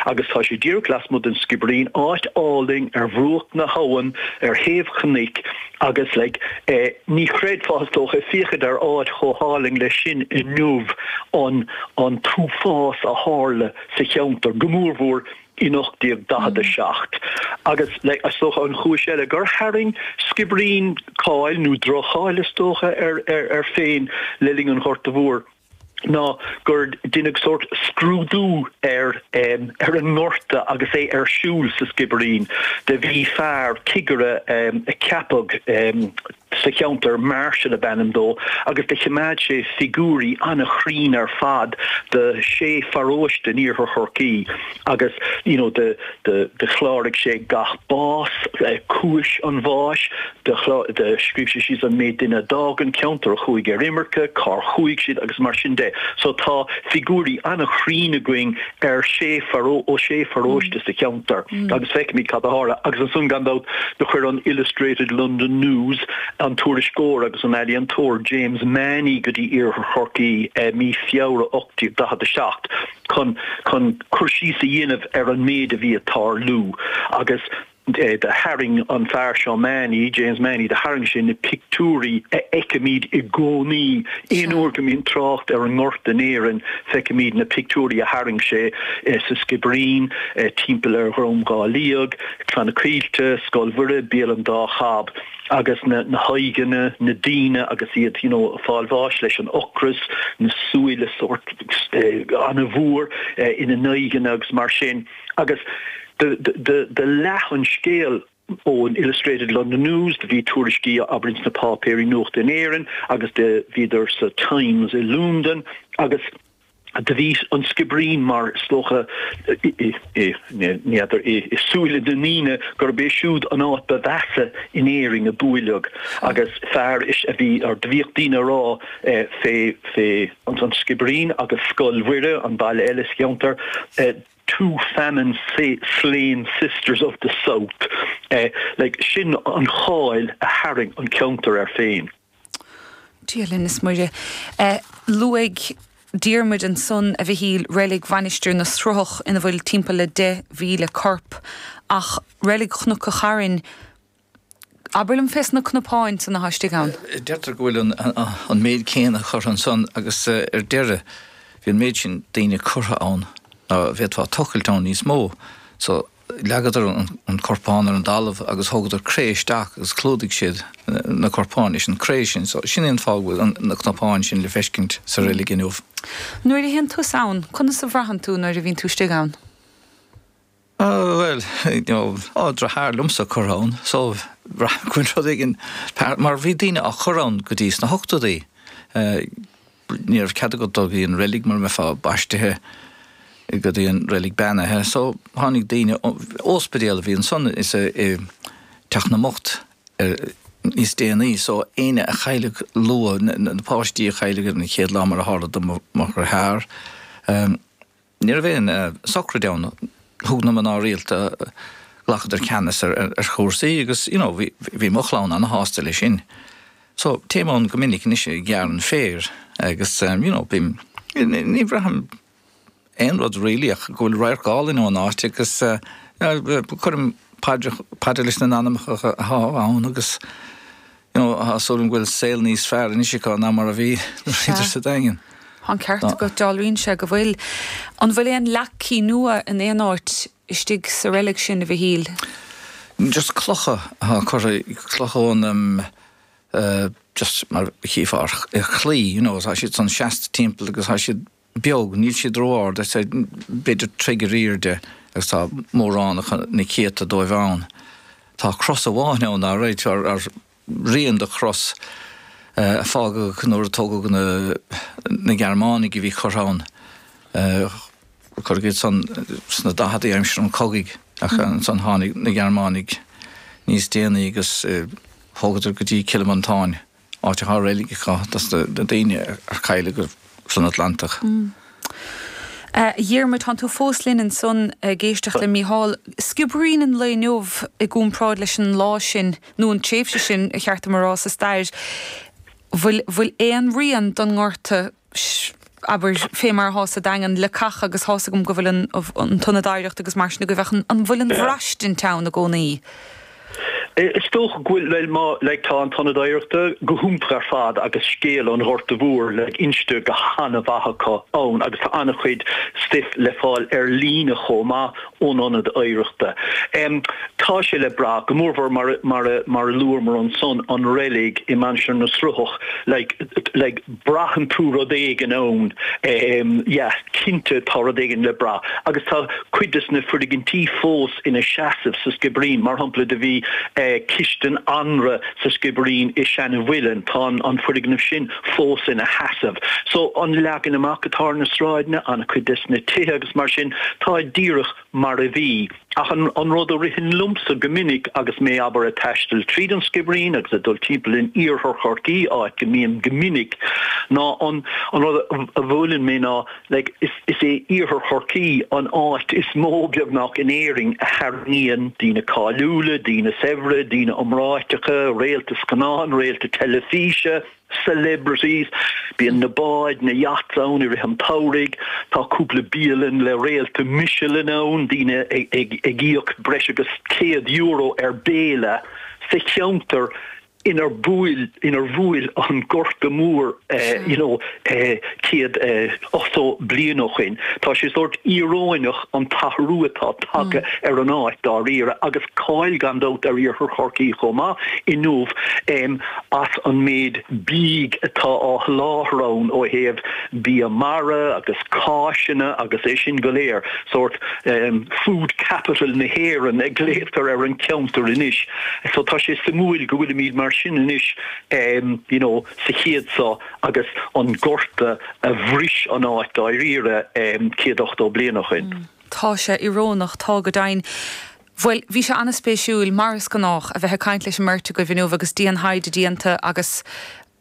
Agus tá sé díreach lasmuigh den Sciobairín, áit álainn ar bhruach na habhann ar thaobh chnoic agus like eh ní chreidfeá is dócha, féachaint ar áit chomh hálainn leis sin inniu, an, an t-uafás a tharla sa cheantar, go mór mhór in 1847. Agus like is dócha an chúis eile gur tharraing Sciobairín cáil nó droch-cháil is dócha ar, ar, air féin le linn an Ghorta Mhóir. ná gur deineadh sórt scrúdú ar an ngorta agus é ar siúl sa Sciobairín. Do bhí fear cigire a ceapadh sa cheantar, Marshall ab ainm dó, agus do chimeád sé figiúirí ana-chruinn ar fad do shé pharóiste in Iarthar Chorcaí agus you know do chláraigh sé gach bás, cúis an bháis, scríobh sé síos an méid duine a d'fhág an ceantar, a chuaigh ar imirce, cár chuaigh siad agus mar sin de. So tá figiúirí an-chruinn againn ar shé ó shé pharóiste sa cheantar agus feicimid cad a tharla agus ansan gan dabht do chuir an Illustrated London News an tuairisceoir agus an ealaíontóir James Mahony go dtí Iarthar Chorcaí i mí Feabhra 1847 chun chun cur síos a dhéanamh ar an méid a bhí ag tarlú agus do tharraing an fear seo Mahony, James Mahony, do tharraing sé na pictiúirí a fheicimid i gcónaí. Aon uair go mbíonn trácht ar an ngorta in Éirinn feicimid na pictiúirí a tharraing sé sa Sciobairín, timpeall ar Dhrom Dhá Liag, Clanna Caoilte, Scoil Mhuire, Béal an Dá Chab. Agus na haghaidheanna, na daoine agus iad you know fáil bháis leis an ocras, na súile sórt of an-mhór ina n-aghaidheanna agus mar sin. Agus do leath an scéal ón Illustrated London News, do bhí tuairiscí abair ins na páipéirí nuachta in Éirinn agus do bhíodar sa Times i Londain agus do bhí an Sciobairín mar is dócha n'fheadar i súile na ndaoine gurb é siúd an áit ba mheasa in Éirinn a buaileadh agus fear a bhí or do bhíodh daoine a' rá fé fé an Sciobairín agus Scoil Mhuire, an baile eile sa cheantar, two famine slain sisters of the South'. Sin an cháil a tharraing an ceantar air féin. Dia linn is Muire. Luaigh Diarmuid ansan, a Mhichíl, reilig Mhainistir na Sruthach ina bhfuil timpeall le 10,000 corp, ach reilig Chnoc a' Chairn, Abair liom fé sna cnapáin san athá istigh ann. Deirtear go bhfuil an méid céanna curtha ansan agus ar deireadh bhí an méid sin daoine curtha ann ná bhféadfá tochailt ann níos mó so leagadar an corpán ar an dtalamh agus thugadar cré isteach agus chlúdaigh siad na corpáin leis an chré sin so sin é an fáth go bhfuil na cnapáin sin le feiscint sa reilig inniu. Nuair a théann tusa ann, conas a bhraitheann tú nuair a bhíonn tú istigh ann? Bhuel, tá deartháir liomsa curtha ann, so bhraith mé rud éigin, mar bhí daoine á chur ann go dtí sna hochtadaí, ní raibh cead agat dul go dtí an reilig mura mbeifeá baistithe go dtí an reilig beannaithe, so tháinig daoine, óspidéal a bhí ansan is i dteach na mbocht níos déanaí, so éinne a chailleadh luath, na páistí a chailleadh ar an chéad lá mar a tharla do mo dheartháir, Ní raibh aon sochraid ann. Thug na mná rialta, ghlacadar ceannas ar chúrsaí agus, you know, bhí mo chlann an-shásta leis sin. So, téim ann go minic anois ag gearradh an féir agus, you know, bím, ní bhraithim aon rud really ach go bhfuil radharc álainn ón áit agus cuirim paidir leis na n-anamacha atá ann agus. You know, is dóigh liom go bhfuil saol níos fearr anois acu ná mar a bhí nuair a bhíodar sa Daingean. Tá an ceart agat, dealraíonn sé go bhfuil. An bhfuil aon leac cinn uaighe in aon áit istigh sa reilig sin, a Mhichíl? Just clocha atá curtha, clocha ón, just mar a chífeá ar chlaí, you know, tá siad ansan seasta timpeall agus tá siad beag, níl siad ró-ard, is é b'fhéidir troigh ar aoirde agus tá mórán acu, na céadta dóibh ann. Tá cros amháin ann, alright, nó rian de chros a fágadh nuair a tógadh na na Gearmánaigh a bhí curtha ann, cuireadh iad san sna daicheadaí aimsir an chogaidh ach ansan tháinig na Gearmánaigh níos déanaí agus thógadar go dtí Cill Mhantáin. áit atá reilig acu dos na daoine a cailleadh san Atlantach. Dhiarmuid, tánn tú fós linn ansan ag éisteacht le Mícheál. Sciobairín an lae inniu i gcúmpráid leis an lá sin, nó an tréimhse sin, ba cheart dom a rá, sa stair. Bhfuil aon rian don ngorta? abair, fé mar athá sa Daingean, leacacha, agus thá 's agam go bhfuil an, uh, an t-ionad oidhreachta agus mar sin agaibh, ach an, an bhfuil an bhraistint ann i gcónaí? Is dócha go bhfuil, bhuel, má, like, tá an t-ionad oidhreachta go hiontach ar fad agus scéal an Ghorta Mhóir, like, inste go han-mhaith acu ann agus tá an-chuid stuif le fáil ar líne chomh maith ón ionad oidhreachta. Tá sé le brath, go mórmhór mar a luamar ansan an reilig i Mainistir na Sruthach, like, braitheann tú rud éigin ann, yeah, cinnte tá rud éigin le brath. Agus tá cuid des na foirgintí fós ina seasamh sa Sciobairín, mar shampla do bhí cistin anraith sa Sciobairín i Seanamhuileann, tá an foirgneamh sin, fós ina sheasamh. So, an leagan amach atá ar na sráideanna, ana-chuid des na tithe agus mar sin, tá díreach mar a bhí. Ach an rud a ritheann liomsa go minic agus mé, abair, ag taisteal tríd an Sciobairín agus ag dul timpeall in Iarthar Chorcaí, áit go mbím go minic, ná an rud a bhuaileann mé ná, like, is é iarthar Chorcaí an áit is mó beagnach in Éirinn a tharraingíonn daoine cáiliúla, daoine saibhre, daoine iomráiteacha, réalta scannán, réalta teilifíse, celebrities. Bíonn na báid, na yachts ann i rith an tsamhraidh. Tá cúpla bialann le réalta Michelin ann, daoine ag íoc breis agus €100 ar bhéile sa cheantar. inar bhuail, inar bhuail an Gorta Mór you know céad ochtó bliain ó shin. Tá sé sórt íoróineach an t-athrú atá tagtha ar an áit, dáiríre, agus cáil gan dabht ar Iarthar Chorcaí chomh maith inniu em as an méid bídh atá á sholáthar ann ó thaobh bia mara agus cáiseanna agus é sin go léir, sórt em food capital na hÉireann a ghlaotar ar an cheantar anois. So tá sé suimiúil go bhfuilimid mar sin anois, you know, sa chéad seo agus an gorta a bhris an áit dáiríre céad ochtó bliain ó shin. Tá sé íorónach, tá go deimhin. Bhuel, bhí sé ana-spéisiúil, mar is gnách, a bheith ag caint leis an mbeirt agaibh inniu agus diantaighde déanta agus,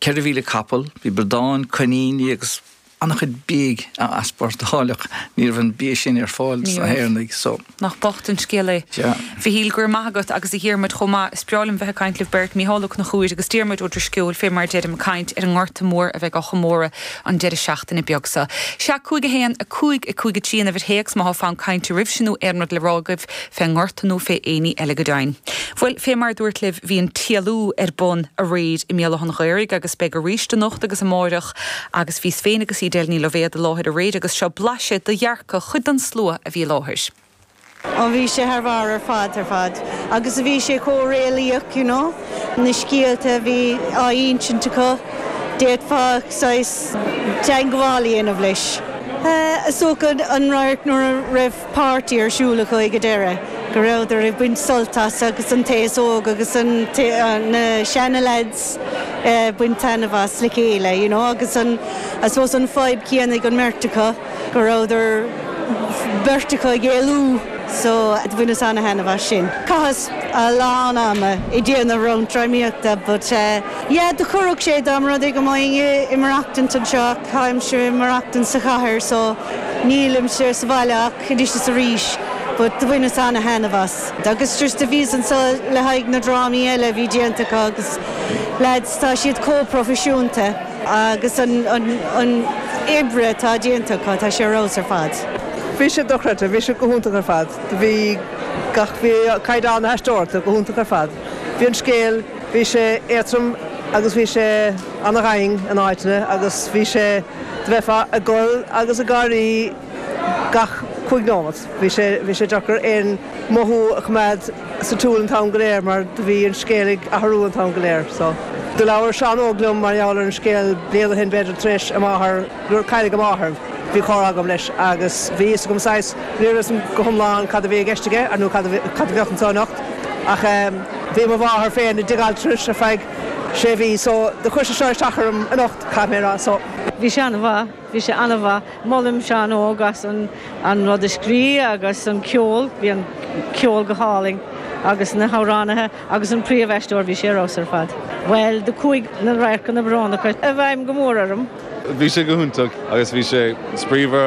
ceithre mhíle capall, bhí bradáin, coiníní agus an-chuid bídh á easpórtáil ach ní raibh an bia sin ar fáil dos na hÉireannaigh so. Nach bocht an scéal é. A Mhichíl, go raibh maith agat, agus a Dhiarmuid chomh maith. Is breá liom bheith ag caint libh beirt, Micheál Ó Conchúir agus Diarmuid Ó Drisceoil, fé mar a deirim, ag caint ar an nGorta Mór a bheidh á chomóradh an deireadh seachtaine beag so. Sea, 5 1, 5 5 3 an uimhir théacs má tá fonn cainte oraibhse nó aon rud le rá agaibh. fén ngorta nó fé éinní eile go deimhin. Bhuel, fé mar a dúirt libh, bhí an TLU ar bun aréir i mBéal Átha an Ghaorthaidh agus beidh aríst anocht agus amáireach agus bhíos féin agus Edel Ní Loibhéad i láthair aréir agus seo blaiseadh de dhearcadh chuid den slua a bhí i láthair. Ó bhí sé thar bharr ar fad ar fad agus bhí sé chomh réalaíoch you know, na scéalta a bhí á ínsint acu, d'fhéadfá saghas teangabháil a dhéanamh leis. Is dócha an radharc nuair a raibh páirtí ar siúl acu i ndeireadh, go rabhadar ag baint sult as agus an t-aos óg agus na seana leaids ag baint taitneamh as le chéile, you know, agus an, I suppose, an fadhb céanna ag an mbeirt acu, go rabhadar beirt acu ag éalú, so bhaineas ana-thaitneamh as sin. Chaitheas a lán ama ag déanamh roinnt drámaíochta but, yeah, do chuir sé, domsa, rudaí go léir ag maireachtaint anseo. Táimse ag maireachtaint sa chathair so nílimse sa bhaile ach anois is arís but do bhaineas ana-thaitneamh as. Agus just a bhíos ann le haghaidh na drámaí eile a bhí déanta acu agus lads tá siad comh proifisiúnta agus an an oibre atá déanta acu tá sé ar fheabhas ar fad. Bhí siad dochreidte, bhí siad go hiontach ar fad, bhí gach, bhí caighdeán na haisteoireachta go hiontach ar fad, bhí an scéal. Bhí sé éadtrom agus bhí sé ana-dhoimhin in áiteanna agus bhí sé, do bheithfeá ag gol agus ag gáirí gach cúig nóimeat. Bhí sé, bhí sé deacair aon mothú a choimeád sa tsiúl an t-am go léir mar do bhí an scéal ag athrú an t-am go léir. So. Do labhair Seán Óg liom mar gheall ar an scéal bliain ó shin b'fhéidir tar éis a mháthair Nuair a cailleadh a mháthair, bhí comhrá agam leis agus bhí a fhios agam saghas, ní raibh a fhios agam go hiomlán cad a bhí i gceist aige nó cad a bheadh anseo anocht ach bhí mo mháthair féin i dtigh altranais ar feadh sé mhí so do chuir sé seo isteach orm anocht, caithfidh mé a rá. So. bhí sé an-mhaith, bhí sé an-mhaith. Molaim Seán Óg as an rud a scríobh agus an ceol, bhí an ceol go hálainn agus na hamhránaithe. Agus an príomhaisteoir, bhí sé ar fheabhas ar fad. Bhuel, do chuaigh na radharcanna brónacha i bhfeidhm go mór orm. Bhí sé go hiontach agus bhí sé spraíúil.